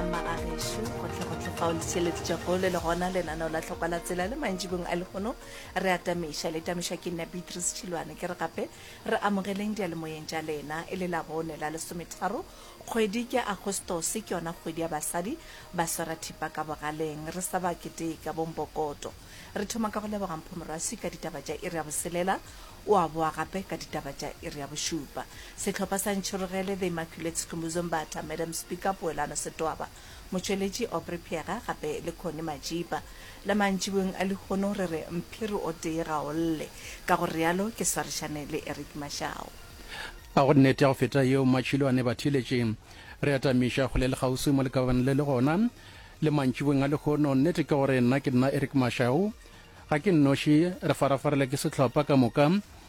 magagešo gotlhegotlhe fao le seletšego le le gona lenaneo la tlhokwa la tsela le mantšibong a legono re atamiša le tamišwa ke nna beatrice tšhilwane ke re gape re amogeleng dialemoyeng tša lena e le la bone la lesometharo kgwedi ke agostose ke yona kgwedi ya basadi ba swara thipa ka bogaleng re sa ba keteka bombokoto re thoma ka go leboga mphomorwaswi ka ditaba tša iri ya boselela o a boa gape ka ditaba tša iri ya bošupa. Sehlopha sa Ntšhirogele, The Immaculate Sikhumbuzo Mbatha, Madam Speaker Poelano Setwaba, motšweletši Aubrey Phega gape le Connie Majipa. Le mantšiboweng a lehono re re mphiri o tee ga o lle, ka go realo ke swarišane le Eric Mashau. A go nnete ya go feta yeo Matšhilo a ne ba theeletše? Re atamiša kgole le kgauswi mo le ka bana le le gona. Le mantšiboweng a lehono nnete ke gore nna ke nna Eric Mashau. Ga ke nnoši, re farafarela ke sehlopha ka moka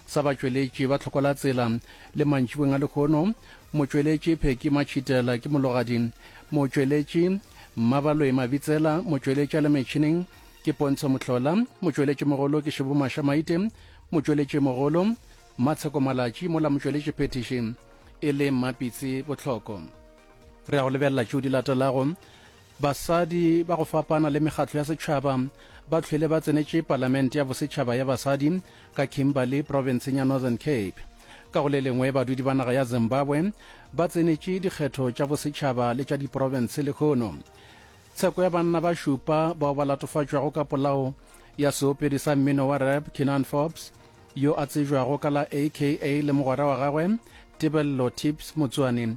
sa batšweletši ba Tlhokwalatsela le mantšibeng a lehono, motšweletši Pheki Matšhitela, ke mologadi, motšweletši Mmabaloe Mabitsela, motšweletši a le metšhineng ke Pontsho Mohlola, motšweletšimogolo ke Šebo Masha Maite, motšweletšimogolo Matsheko Malatši, mola motšweletši phethiši e le Mmapitsi Bohloko. Re ya go lebelela tšeo di latelago. Basadi ba go fapana le mekgatlo ya setšhaba ba hlwele ba tsenetše Palamente ya Bosetšhaba ya Basadi ka Kimberley, profenseng ya Northern Cape. Ka go le lengwe, badudi ba naga ya Zimbabwe ba tsenetše dikgetho tša bosetšhaba le tša diprofense lehono. Tsheko ya banna ba šupa bao ba latofatšwago ka polao ya seopedi sa mmino wa rap Keenan Forbes, yo a tsejwago ka la aka le mogwera wa gagwe Tebello Tips Motsoane,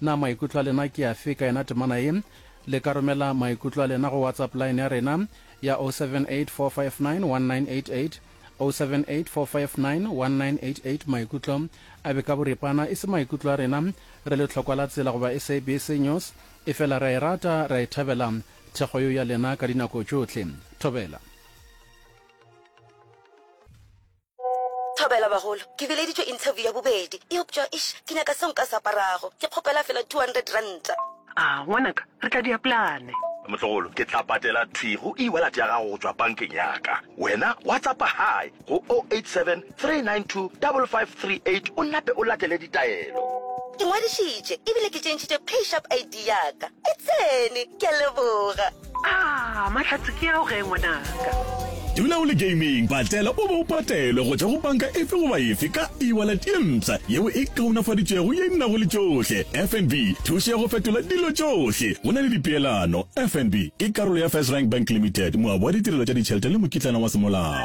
Na maikutlo a lena ke afe ka yona temana ye? Le ka romela maikutlo a lena go WhatsApp line ya rena ya 0784591988, 0784591988. Maikutlo a be ka boripana e se maikutlo a rena re le Tlhokwa la Tsela goba SABC News, efela re a e rata, re a e thabela thekgo yeo ya lena ka dinako tšohle. Thobela. Thobela bagolo, ke bileditšwe interview ya bobedi, eupša eish, ke nyaka seo nka se aparago. Ke kgopela fela two hundred ranta. A, ngwanaka, re tla dia plane. Motlogolo, ke tla patela thwi go e-wallet ya gago go tšwa bankeng ya ka. Wena WhatsAppa Hi go o eight seven three nine two five five three eight o nape o latele ditaelo. Ke ngwadišitše ebile ke tšentšhitše PayShap ID ya ka. E tsene! Ke a leboga. Ah, mahlatse ke ao ge ngwanaka. Dula o le gaming, patela o be o patelwe go tšwa go panka efe goba efe ka e-wallet ye mpsha yeo e kaonafaditšwego ye e nnago le tšohle. FNB, thušo ya go fetola dilo tšohle. Go na le dipeelano. FNB ke karolo ya First Rank Bank Limited, moabi wa ditirelo tša ditšhelete le mokitlana wa semolao.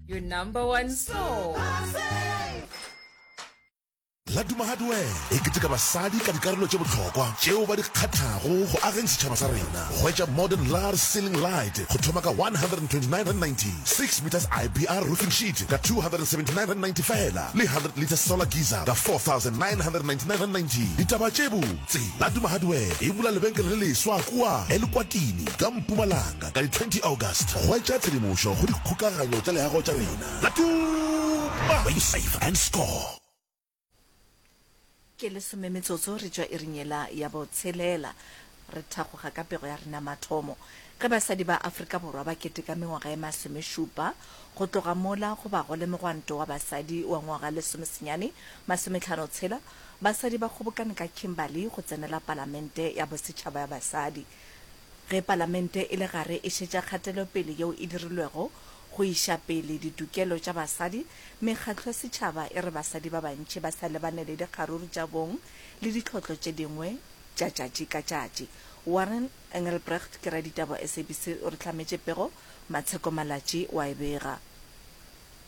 Your number one soul. La Duma Hardware e keteka basadi ka dikarolo tše bohlokwa tšeo ba di kgathago go ageng setšhaba sa rena. Hwetša modern lar ceiling light go thoma ka R129.90, 6 meters IBR roofing sheet ka R279.90 fela le 100 litre solar geyser ka R4,999.90. Ditaba tše botse, La Duma Hardware e bula lebenkele le leswa kua Elukwatini ka Mpumalanga. Ka di 20 August, hwetša tshedimošo go dikgokaganyo tša leago tša rena la Tuma! Play safe and score! Ke lesome metsotso re tšwa iring yela ya bo tshelela. Re thagoga ka pego ya rena mathomo ge basadi ba Afrika Borwa ba keteka mengwaga ye masomešupa go tloga mola go ba go le mogwanto wa basadi wa ngwaga lesomesenyane masometlhano tshela. Basadi ba kgobokane ka Kimberley go tsenela palamente ya bosetšhaba ya basadi. Ge Palamente e le gare e šetša kgatelopele yeo e dirilwego go iša pele ditokelo tša basadi, mekgatlo ya setšhaba e re basadi ba bantši ba sa lebane le dikgaruru tša bong le ditlhotlo tše dingwe tša tšatši ka tšatši. Warren Engelbrecht ke raditaba wa SABC o re hlametše pego Matsheko Malatji wa e bega.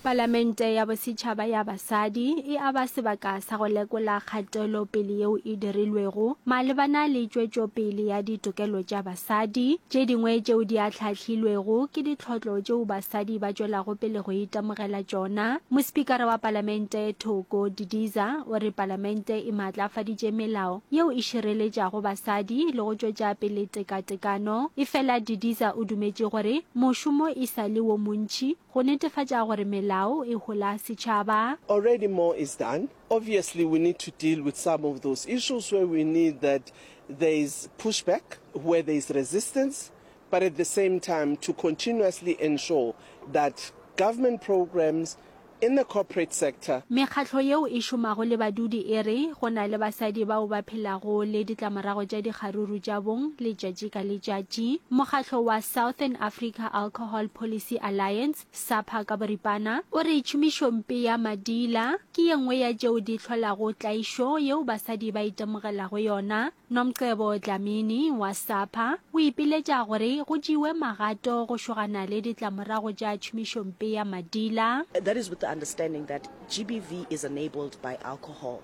Palamente ya Bosetšhaba ya Basadi e a ba sebaka sa go lekola kgatelopele yeo e dirilwego malebana le tšwetšopele ya ditokelo tša basadi. Tše dingwe tšeo di ahlahlilwego ke ditlhotlo tšeo basadi ba tšwelago pele go itemogela tšona. Mospikara wa Palamente Thoko Didiza o re Palamente e maatlafaditše melao yeo e šireletšago basadi le go tšwetša pele tekatekano. Efela Didiza o dumetše gore mošomo e sa le wo montši. Go netefatša gore melao e hola setšhaba. Already more is done. Obviously we need to deal with some of those issues where we need that there is push back, where there is resistance, but at the same time to continuously ensure that government programs in the corporate sector, Mekgatlo yeo e šomago le badudi e re go na le basadi bao ba phelago le ditlamorago tša dikgaruru tša bong letšatši ka letšatši. Mokgatlo wa Southern Africa Alcohol. Alcohol Policy Alliance, SAPA ka boripana, o re tšhomišompe ya madiila ke ye nngwe ya tšeo di hlolago tlaišo yeo basadi ba itemogelago yona. Nomcebo Dlamini wa SAPA o ipiletša gore go tšewe magato go šogana le ditlamorago tša tšhomišompe ya madiila. That is with the understanding that GBV is enabled by alcohol.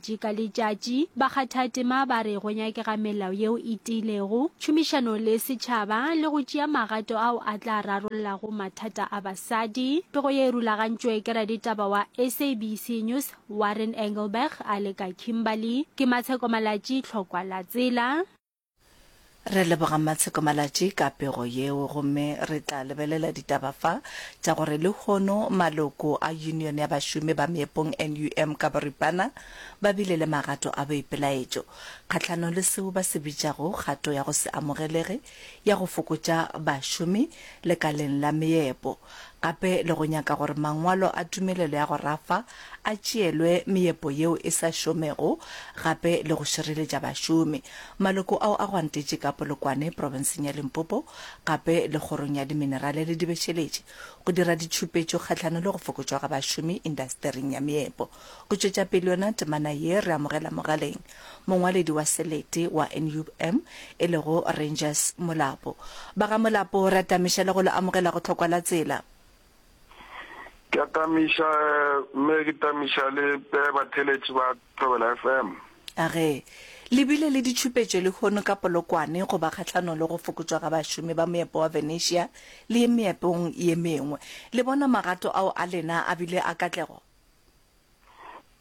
Tši ka letšatši, bakgathatema ba re go nyakega melao yeo e tiilego, tšhomišano le setšhaba le go tšea magato ao a tla rarollago mathata a basadi. Pego ye e rulagantšwe ke raditaba wa SABC News Warren Engelberg a le ka Kimberley. Ke Matsheko Malatji, Tlhokwa la Tsela. Re leboga Mmatsheko Malatji ka pego yeo gomme re tla lebelela ditaba fa tša gore lehono maloko a Union ya Bašomi ba Meepong, NUM, ka boripana ba bile le magato a boipelaetšo kgahlanong le seo ba se bitšago kgato ya go se amogelege ya go fokotša bašomi lekaleng la meepo. gape le go nyaka gore mangwalo a tumelelo ya go rafa a tšeelwe meepo yeo e sa šomego gape le go šireletša bašomi. Maloko ao a gwantetše ka Polokwane, profenseng ya Limpopo, gape le Kgorong ya Diminerale le Dibešeletše go dira ditšhupetšo kgahlano le go fokotšwa ga bašomi indastering ya meepo. Go tšwetša pele yona temana ye, re amogela mogaleng Mongwaledi wa selete wa NUM e lego Rangers Molapo. Ba ga Molapo re atamiša le go le amogela go Tlhokwa la Tsela. Ke a tamiša mme ke tamiša le pe batheletši ba Thobela FM. A ge le bile le ditšhupetšo lehono ka Polokwane goba kgahlanong le go fokotšwa ga bašomi ba moepo wa Venetia le ye meepong ye mengwe, le bona magato ao a lena a bile a katlego?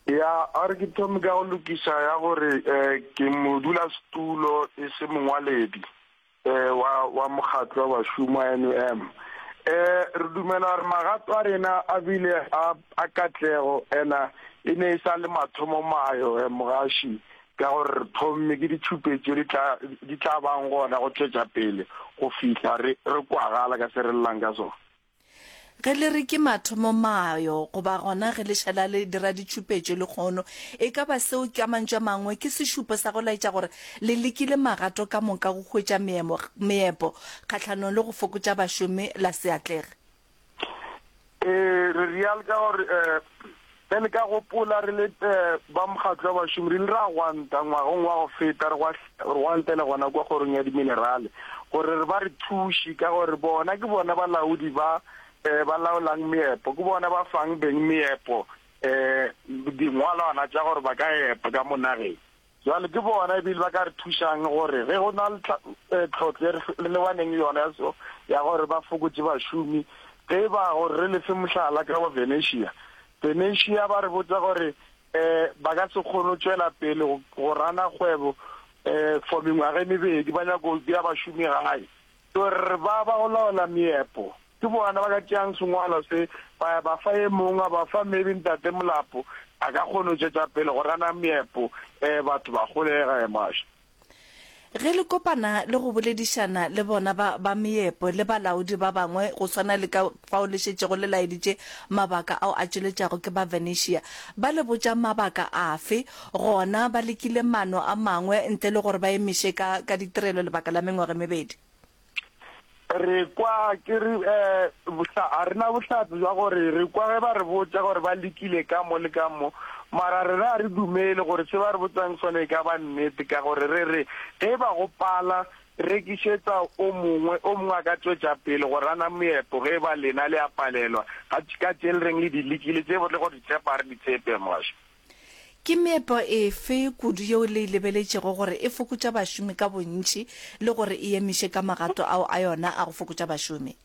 ya a re ke thome ka go lokiša ya gore um ke modulasetulo e se mongwaledi um wa wa mokgatlo wa bašomi wa n u m um re dumela gore magato a rena a bile a katlego ena e ne e sa le mathomo mayo um mogaši ka gore re thomme ke ditšhupetso di tla bang gona go tšwetša pele go fihla re kwagala ka se re lelang ka sona Ge le re ke mathomo mayo, goba gona ge le šala le dira ditšhupetšo lekgono, e ka ba seo ka mantšu a mangwe ke sešupo sa go laetša gore le lekile magato ka moka go hwetša meemo, meepo kgahlanong le go fokotša bašomi la se atlege. Ee, re real ka gore Ge le ka gopola, re le ba Mokgatlo wa Bašomi re ile ra gwanta ngwageng wa go feta, re gwanta e le gona kua Kgorong ya Diminerale, gore re ba re thuše, ka gore bona ke bona balaodi ba ba laolang meepo, ke bona ba fang beng meepo dingwalwana tša gore ba ka epa ka mo nageng. Bjale ke bona e bile ba ka re thušang gore ge go na le tlhotlo e re lebaneng le yona ya so ya gore ba fokotše bašomi. Ge e ba gore re lefe mohlala ka wa Venetia, Venetia ba re botsa gore um ba ka se kgone go tšwela pele go rana kgwebo um for mengwaga e mebedi, ba nyaka go bea bašomi gae. Tor ba ba go laola meepo. Ke bona ba ka tšeang sengwalo se, ba ya ba fa e mongwe, a ba fa. Maybe Ntate Molapo a ka kgona go tšwetša pele go gana meepo, ee, batho ba golega. Ee, Maša. Ge le kopana le go boledišana le bona ba, ba meepo le balaodi ba bangwe, go swana le ka, Bao le šetšego le laeditše mabaka ao a tšweletšago ke ba Venetia. Ba le botša mabaka afe? Gona ba lekile maano a mangwe ntle le gore ba emiše ka, ka ditirelo lebaka la mengwaga e mebedi. Re kwa ke re, eh, bohla, ga re na bohlatse bja gore re kwa ge ba re botša gore ba lekile ka mo le ka mo, mara rena ga re dumele gore se ba re botsang sona e ka ba nnete, ka gore re re, ge e ba go pala, Rekišetsa o mongwe, o mongwe a ka tšwetša pele go rana moepo ge e ba lena le a palelwa, ga ka tše le reng le di lekile tše le go di tshepa ga re di tshepe. Moshe. Ke meepo efe kudu yeo le e lebeletšego gore e fokotša bašomi ka bontši le gore e emiše ka magato ao a yona a go fokotša bašomi?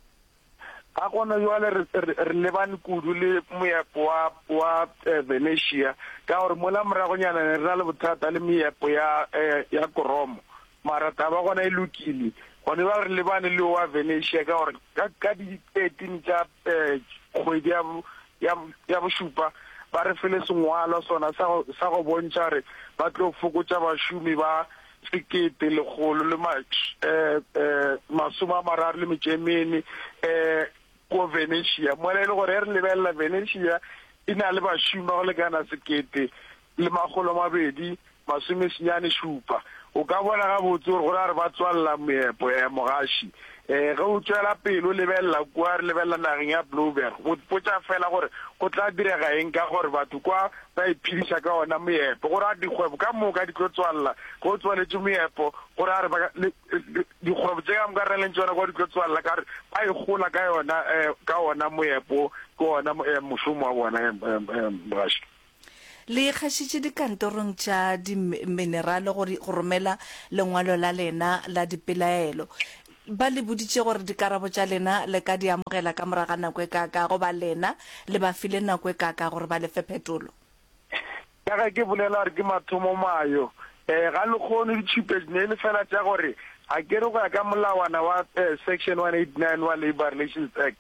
Ka gona bjale re, re, re lebane kudu le moepo wa, wa eh, Venetia, ka gore mola moragonyana ne re na le bothata le meepo ya, eh, ya Koromo. Mara taba gona e lokile. Gona bjale re lebane le wa Venetia, ka gore ka, ka di 13 tša eh, kgwedi ya, bo- ya, bo- ya bošupa, ba re file sengwalwa sona sa go, sa go bontšha gore ba tlo fokotša bašomi ba sekete lekgolo le ma masome a mararo le metšo e mene ko Venetia mola e le gore re lebelela Venetia e na le bašomi ba go lekana sekete le makgolo a mabedi masome senyane šupa o ka bona gabotse gore go na re ba tswalela moepo ya mogaši Ee, ge o tšwela pele o lebelela kua, re lebelela nageng ya Blouberg, o ipotša feela gore go tla direga eng ka gore batho kwa ba iphediša ka ona moepo. Go ra dikgwebo ka moka di tlo tswalela ge o tswaletše moepo, go ra re ba, le, le, dikgwebo tše ka moka re na leng tšona kwa di tlo tswalela ka gore ba e gola ka yona, eh, ka ona moepo, ke ona eh, mošomo wa bona, eh, eh, eh, Mogašwa. Le ikgašitše dikantorong tša diminerale go romela lengwalo la lena la dipelaelo. Ba le boditše gore dikarabo tša lena le ka di amogela ka morago ga nako e kaaka goba lena le ba file nako e kaaka gore ba le fe phetolo? Ka ge ke bolela gore ke mathomo mayo, Ee, ga le kgone ditšhupetš ne e le fela tša gore a ke re go ya ka molawana wa Section 189 wa Labour Relations Act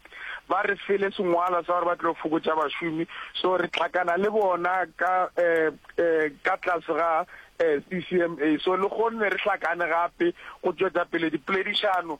ba re fele sengwalwa sa gore ba tlo fokotša bašomi so re tlhakana le bona ka ka tlase ga CCMA so le kgonne re hlakane gape go tšwetsa pele dipoledišano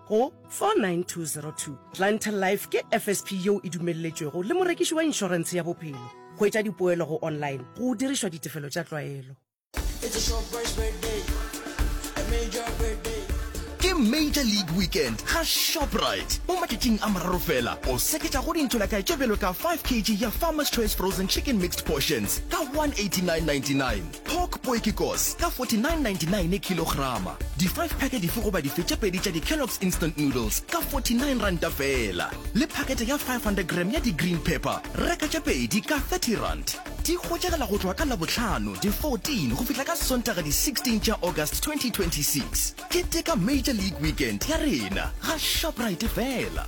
Go 49202, Clientele Life ke FSP yeo e dumelletšwego le morekiši wa inšorense ya bophelo. Hwetša dipoelo go online go dirišwa ditefelo tša tlwaelo. Ke Major League Weekend ga Shoprite. Mo matšatšing a mararo fela, o seketša go dintho lakae tše bjalo ka 5 kg ya Farmer's Choice Frozen Chicken Mixed Portions ka 189.99. Pork poekikos ka 49.99 kilograma. Di five pack dife goba dife tše pedi tša di Kellogg's Instant Noodles ka 49 ranta feela. Le pakete ya 500 gram ya di Green Pepper, reka tše pedi ka 30 rand. Di hwetšagala go tloga ka Labohlano di 14 go fihla ka Sontaga di 16 tša August 2026. Keteka Major League Weekend ya rena ga Shoprite feela.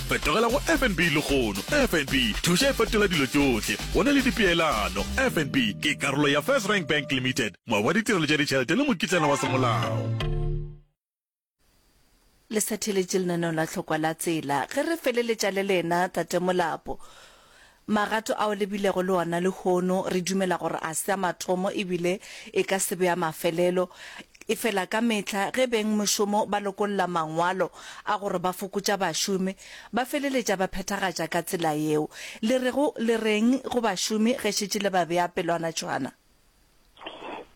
Fetogela go FNB lehono. FNB, thuša e fetola dilo tšohle. Go na le dipeelano. FNB ke karolo ya First Rank Bank Limited, moabi wa ditirelo tša ditšhelete le mokitlana wa semolao. Le sa theletše lenaneo la Hlokwa la Tsela. Ge re feleletša le lena, Tate Molapo, Magato ao le bilego le ona lehono re dumela gore a se a matomo e bile e ka se be a mafelelo. Efela ka mehla ge beng mošomo ba lokolla mangwalo a gore ba fokotša bašomi, ba feleletša ba phethagatša ka tsela yeo. Le rego le re'ng go bašomi ge šetše le ba bea pelwana tšhwana?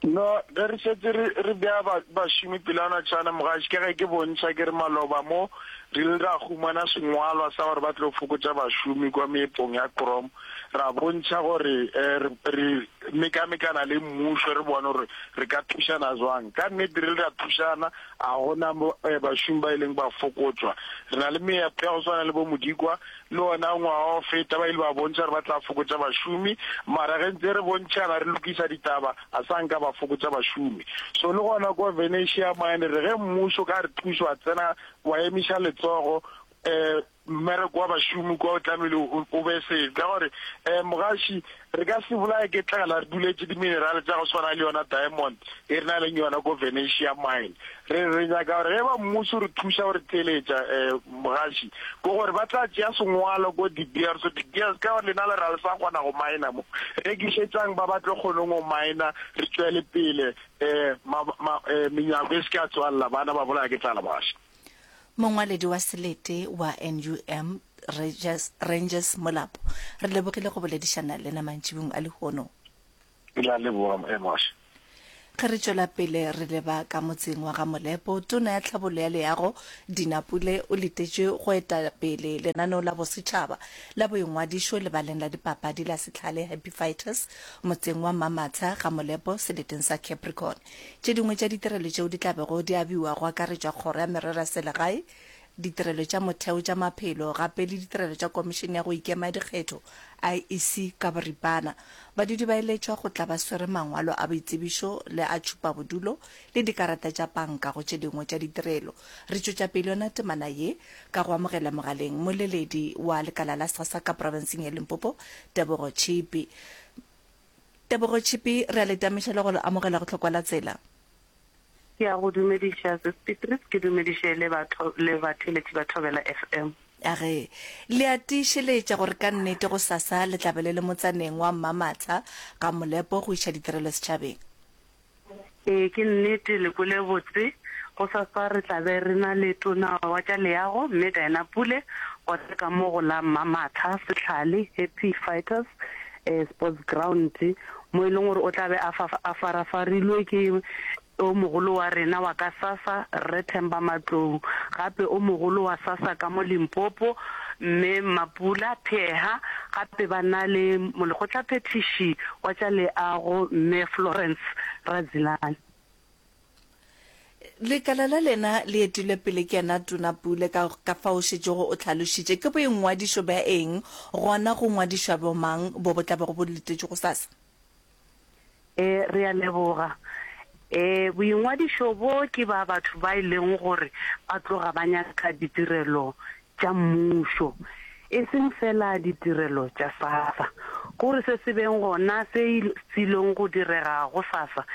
No, ge re šetše re, re bea ba, bašomi pela natšana, mogaši, ka ge ke bontšha ke re maloba mo, re ile ra humana sengwalwa sa gore ba tlo fokotša bašomi kua meepong ya Krom, ra bontšha gore eh, re, re mekamekana le mmušo, re bone gore re ka thušana zwang. Ka nnete re ile ra thušana, a go na mo, eh, bašomi ba ileng ba fokotšwa. Re na le meepo ya go swana le bo Modikwa, Le wona ngwaga o feta ba ile ba bontšha gore ba tla fokotša bašomi, mara ge ntse re bontšhana re lokiša ditaba a sa nka ba fokotša bašomi. So le gona kwa Venetia mane re ge mmušo ka re thuše wa tsena wa emiša letsogo um mmereko wa bašomi kwa o tlamehile o be se ka gore um mogaši Re ka se bolawe ke tlala re duletše diminerale tša go swana le yona diamond e re na leng yona ko Venetia Mine. Re re nyaka gore ge ba mmušo re thuša go re theeletša, Mogaši, ke gore ba tla tšea sengwalo ko De Beers, De Beers ka gore lena le re ga le sa kgona go miner mo, rekišetšang ba ba tlo kgoneng go miner re tšwele pele, Menyako e se ke ya tswalela bana ba bolawa ke tlala, Mogaši. Mongwaledi wa selete wa NUM, Rangers, Rangers Molapo, re lebogile go boledišana lena mantšibung a lehono. Ke la leboga Moše. Ge re tšwela pele re leba ka motseng wa ga Molepo, tona ya tlhabollo ya leago Dina Pule o letetše go eta pele lenaneo la bosetšhaba la boingwadišo lebaleng la dipapadi la Setlhale Happy Fighters motseng wa Mamatsha ga Molepo seleteng sa Capricorn. Tše dingwe tša ditirelo tšeo di tla bego di abiwa go akaretšwa Kgoro ya Merero ya Selegae, Ditirelo tša Motheo tša Maphelo gape le ditirelo tša Komišene ya go Ikema ya Dikgetho, IEC, ka boripana. Badudi ba eletšwa go tla ba swere mangwalo a boitsebišo le a tšhupabodulo le dikarata tša panka go tše dingwe tša ditirelo. Re tšwetša pele yona temana ye ka go amogela mogaleng moleledi wa lekala la SASSA ka profenseng ya Limpopo, Tebogo Tšhipi. Tebogo Chippy, re a le tamiša le go le amogela go Tlhokwa la Tsela. Ke a go dumediša Sis Beatrice, ke dumediše le batho le batheeletši ba Thobela FM. A re, Le a tiišeletša gore ka nnete gosasa le tla be le le motsaneng wa Mmamatsa, Ga-Molepo go iša ditirelo setšhabeng? Ee, ke nnete, le kwele botse. Gosasa re tla be re na le Tona wa tša Leago, Mme Diana Pule, wa tša ka mo go la Mmamatha, Sehlale, Happy Fighters Sports Ground, mo e leng gore o tla be a fa, a farafarilwe ke o mogolo wa rena wa ka Sassa, Rre Themba Matlou, gape o mogolo wa Sassa ka mo Limpopo. Mme Mapula Pheha gape ba na le molekgotlaphethiši wa tša leago Mme Florence Razilani. Lekala la lena le etilwe pele ke yena Tona Pule ka ka fao o šetšego o tlhalošitše. Ke boingwadišo bja eng gona go ngwadišwa bomang bo bo tla bego bo letetšwe gosasa? Ee, re a leboga. Ee, boingwadišo bjo ke ba batho ba e lego gore ba tloga ba nyaka ditirelo tša mmušo, e seng feela ditirelo tša SASSA. Go re se se beng gona se ilego go direga go SASSA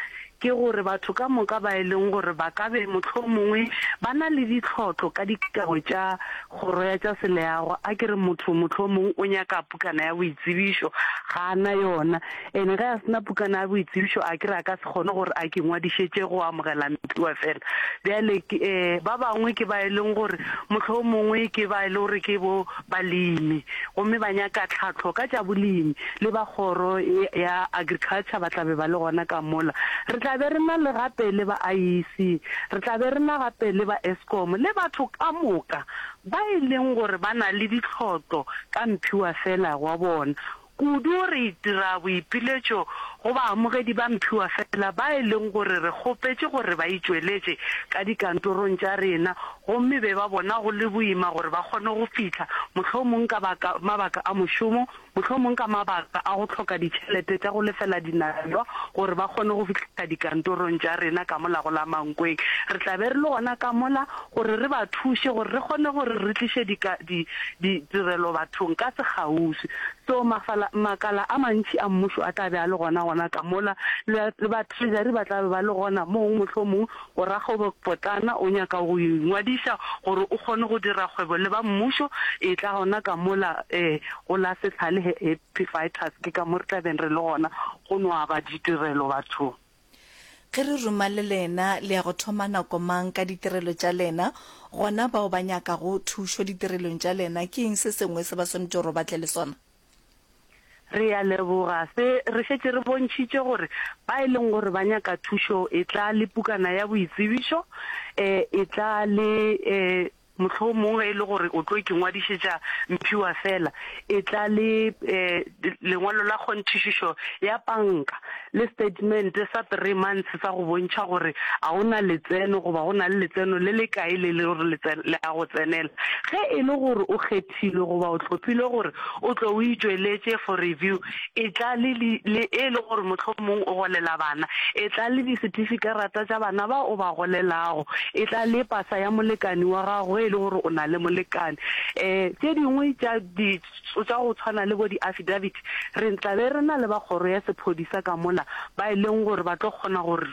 ke gore batho ka moka ba e leng gore ba ka be mohlomongwe ba na le ditlhotlo ka dikao tša Kgoro ya tša Seleago, a ke re motho mohlomongwe o nyaka pukana ya boitsebišo, ga a na yona. Ene ge a se na pukana ya boitsebišo, a ke re a ka se kgone gore a ke ngwadišetše go amogela Mpiwa fela. Bjale ke, ee, ba bangwe ke ba e leng gore mohlomongwe ke ba e le gore ke bo, balemi gomme ba nyaka tlhahlo ka tša bolemi le ba kgoro ya Agriculture ba tla be ba le gona ka mola. Re tla be re na le gape le ba IEC, re tla be re na gape le ba Eskom le batho ka moka ba e leng gore ba na le ditlhotlo ka mphiwa fela wa bona. Kudu re itira boipiletšo go baamogedi ba mphiwa feela ba e leng gore re kgopetše gore ba itšweletše ka dikantorong tša rena gomme be ba bona go le boima gore ba kgone go fihla, mohlomong ka mabaka a mošomo, mohlomong ka mabaka a go hloka ditšhelete tša go lefela dinamelwa gore ba kgone go fihla dikantorong tša rena ka mola go la Mankweng. Re tla be re le gona ka mola gore re ba thuše gore re kgone gore re tliše dika, di, di, tirelo bathong ka sekgauswi. So, mafala, makala a mantši a Mmušo a tla be a le gona, gona ka mola, le, le batrežari ba tla be ba le gona moo. Mohlomong o rakgwebo potlana o nyaka go ingwadiša gore o kgone go dira kgwebo le ba Mmušo, etla gona ka mola um go la Sehlale, Happy Fighters, ke ka mo re tla beng re le gona go no aba ditirelo bathong. Ge re ruma le lena, le ya go thoma nako mang ka ditirelo tša lena? Gona bao ba nyakago thušo ditirelong tša lena, ke eng se sengwe se ba swanetše gore ba tle le sona? Re ya leboga. Se re šetše re bontšhitše gore ba e leng gore ba nyaka thušo, etla le pukana ya boitsebišo, etla le Mohlomong ge e le gore o tlo ke ngwadišetša mphiwa feela, etla le lengwalo la kgonthišišo ya panka le setatemente sa three months sa go bontšha gore a o na letseno goba go na le letseno le le kae le le gore le a go tsenela. Ge e le gore o kgethilwe goba o tlhophilwe gore o tle o e tšweletše for review, etla le li, le e le gore mohlomong o golela bana, etla le disetifikerata tša bana bao o ba golelago, etla le pasa ya molekane wa gago ge e le gore o na le molekane. Um tše dingwe tša di, tša go tshwana le bo di-affidavit, re tla be re na le ba kgoro ya sephodisa ka mola ba e leng gore ba tlo kgona gore.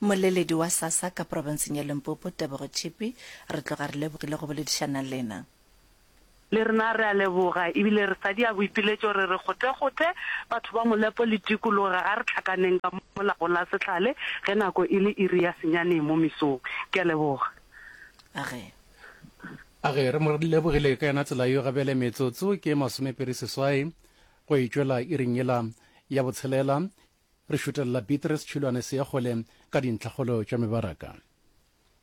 Mmoleledi wa SASSA ka profenseng ya Limpopo, Tebogo Tšhipi, re tloga re lebogile go boledišana lena. Le rena re a leboga ebile re sadia boipiletšo re re gotegothe batho ba Molepo le tikologo ga re tlhakaneng ka mo lago la sehlale ge nako e le iri ya senyane mo mesong. Ke a leboga. A re. A re re mo lebogile ka yona tsela yo ga bjale metsotso ke masomepedi seswai go e tšwela iring yela ya botshelela. Re šutelela Beatrice Tšhilwane Seakgole ka dintlhakgolo tša mebaraka.